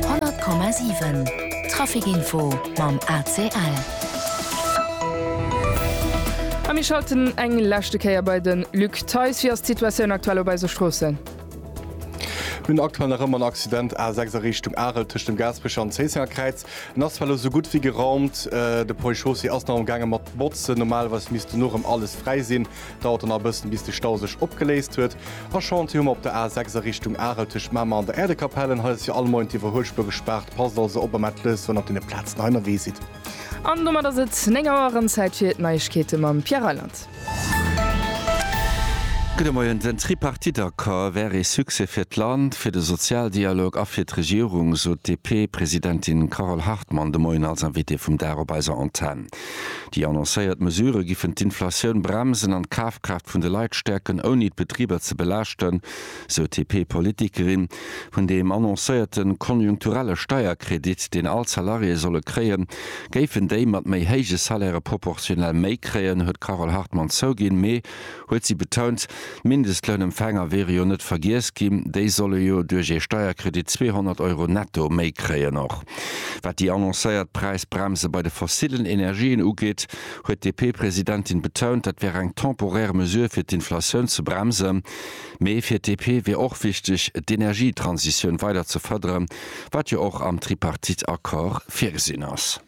100,7 Trafic Info mam ACL. A mir schalten eng leschte Kéier bei de Luc Theis. Wéi ass d'Situatioun aktuell op eise Stroossen? Mir hunn aktuell nach ëmmer en Accident A6 a Richtung Arel tëscht dem Gaasperecher an Zéissenger Kräiz. En ass zwar elo sou gutt wéi geraumt. De Projet Chaussée ass nach amgaange mat botzen. Normalerweis misst dono erëm alles fräi sinn. Dauert dann nach e bëssen, bis de Stau sech opgeléist huet. A Chantier hu mer op der A 6 a Richtung Arel tëscht Mamer an der Äerdekapellen. Hei ass fir all Moien d'Iwwerhuelspuer gespaart. Passt also op a mellt lech, wann der op deene Plazen hei ënnerwee sidd. An domat ass et 9 Auer, erëm Zäit fir d'Neiegkeete mam Pierre Reyland. Gudde Moien. Den Tripartite-Accord wär ee Succès fir d'Land, fir de Sozialdialog a fir d'Regierung, sot d'DP-Presidentin Carole Hartmann de Moien als Invitée vum Dag op eiser Antenn. Déi annoncéiert Mesurë giffen d'Inflatioun bremsen an d'Kafkraaft vun de Leit stäerken, ouni d'Betriber ze belaaschten, sou d'DP-Politikerin. Vun deem annoncéierte konjunkturelle Steierkredit, deen all d'Salariéë solle kréien, géifen déi mat méi héije Salairë proportionell méi kréien, huet d'Carole Hartmann zouginn, mee huet si betount. D'Mindestlounempfänger wiere jo net vergiess ginn, déi solle jo duerch ee Steierkredit 200 Euro netto méi kréien. Och wat déi annoncéiert Präisbremse bei de fossillen Energien ugeet, huet d'DP-Presidentin betount, dat wär eng temporär Mesure fir d'Inflatioun ze bremsen. Mee fir d'DP wier och wichteg, d'Energietransitioun weider ze fërderen, wat jo och am Tripartite-Accord virgesinn ass.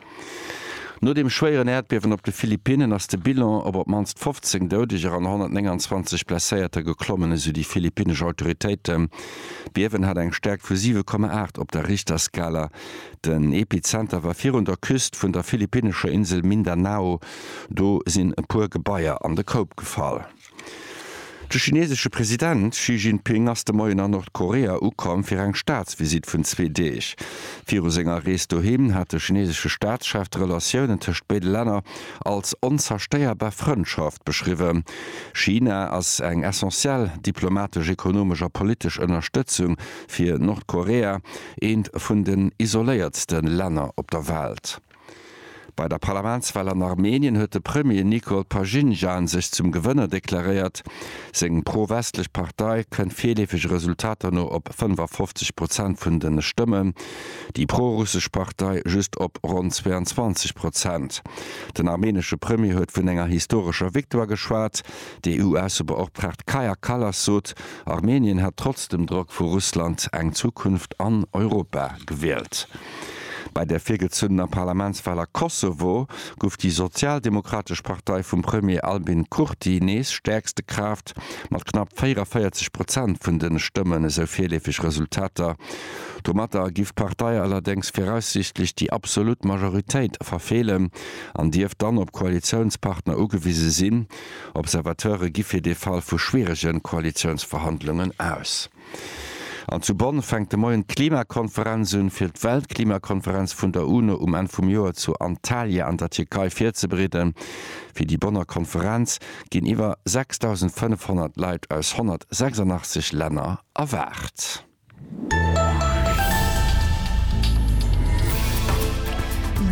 No dem schwéieren Äerdbiewen op de Philippinnen ass de Bilan op op d'mannst 15 Doudeger an 129 Blesséierter geklommen, esou déi philippinnesch Autoritéiten. D'Biewen hat eng Stäerkt vu 7,8 op der Richterskala. Den Epizenter war virun der Küst vun der philippinnescher Insel Mindanao. Do sinn e puer Gebaier an de Koup gefall. De chinesesche President Xi Jinping ass de Moien a Nordkorea ukomm fir eng Staatsvisitt vun zwee Deeg. Viru senger Rees doheem hat de chinesesche Staatschef d'Relatiounen tëscht béide Länner als onzerstéierbar Frëndschaft beschriwwen. China ass eng essentiell diplomatesch, ekonomesch a politesch Ënnerstëtzung fir Nordkorea, eent vun den isoléiertste Länner op der Welt. Bei der Parlamentswal an Armenien huet de Premier Nikol Pashinjan sech zum Gewënner deklaréiert. Seng pro-westlech Partei kënnt virleefege Resultater no op 55 Prozent vun de Stëmmen, déi pro-russesch Partei just op ronn 22 Prozent. Den armenesche Premier huet vun enger historescher Victoire geschwat. Déi EU-Aussebeoptraagt Kaja Kallas sot, Armenien hätt trotz dem Drock vu Russland eng Zukunft an Europa gewielt. Bei der virgezunnener Parlamentswahl a Kosovo gouf déi sozialdemokratesch Partei vum Premier Albin Kurti nees stäerkste Kraaft mat knapp 44 Prozent vun de Stëmmen, esou virleefeg Resultater. Domatter giff d'Partei allerdéngs viraussiichtlech déi absolut Majoritéit verfeelen an dierft dann op Koalitiounspartner ugewise sinn. Observateure gi fir de Fall vu schwierege Koalitiounsverhandlungen aus. An zu Bonn fänkt de Moien d'Klimakonferenz un, fir d'Weltklimakonferenz vun der UNO um Enn vum Joer zu Antalya an der Tierkei virzebereeden. Fir déi Bonner Konferenz ginn iwwer 6.500 Leit aus 186 Länner erwaart.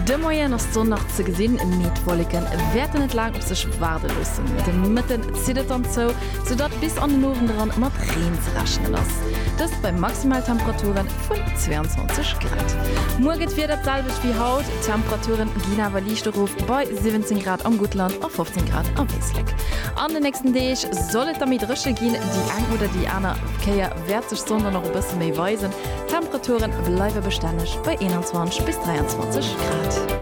De Moien ass d'Sonn nach ze gesinn, mee d'Wolleke wäerten net laang op sech waarde loossen. De Mëtten zitt et dann zou. soudatt bis an den Owend eran mat Reen ze rechnen ass, dëst bei Maximaltemperature vun 22 Grad. Muer gëtt d'Wieder d'selwecht wéi haut, d'Temperature ginn awer liicht erof bei 17 Grad am Guttland a 15 Grad am Éislek. An den nächsten Deeg soll et da méi dréche ginn, déi eng oder déi aner Kéier wäert sech d'Sonn dann och e bësse méi weisen, d'Temperature bleiwe bestänneg bei 21 bis 23 Grad.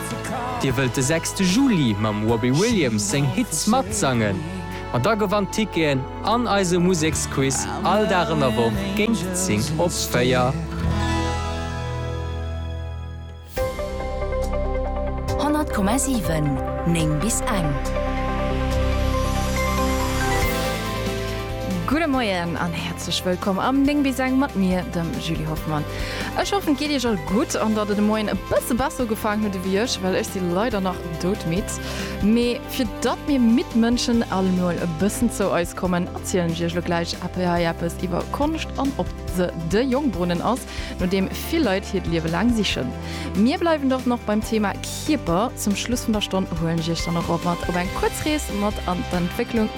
Dir wëllt de sechste Juli mam Robbie Williams seng Hits matsangen? Ma da gewannt Ticketen an eise Museksquiz all Dag an der Woch géint 10 op 4. Honnert Komma siwen, néng bis eng. Herzlech wëllkomm am 9 bis eng mat mir, dem Julie Hoffmann. Ech hoffen, et geet Iech all gutt an datt Der de Moien e bësse besser ugefaangen hutt ewéi ech, well ech si leider nach doudmidd. Mee fir datt mir midd Mënschen all emol e bëssen zou eis kommen, erzielen ech Iech elo gläich hei eppes iwwer Konscht an ob se de Jongbrunnen ass, no deem vill Leit hiert Liewe laang sichen. Mir bleiwen dort nach beim Thema Kierper. Zum Schluss vun der Stonn huelen ech Iech dann och och mat op eng kuerz Rees mat an d'Entwécklung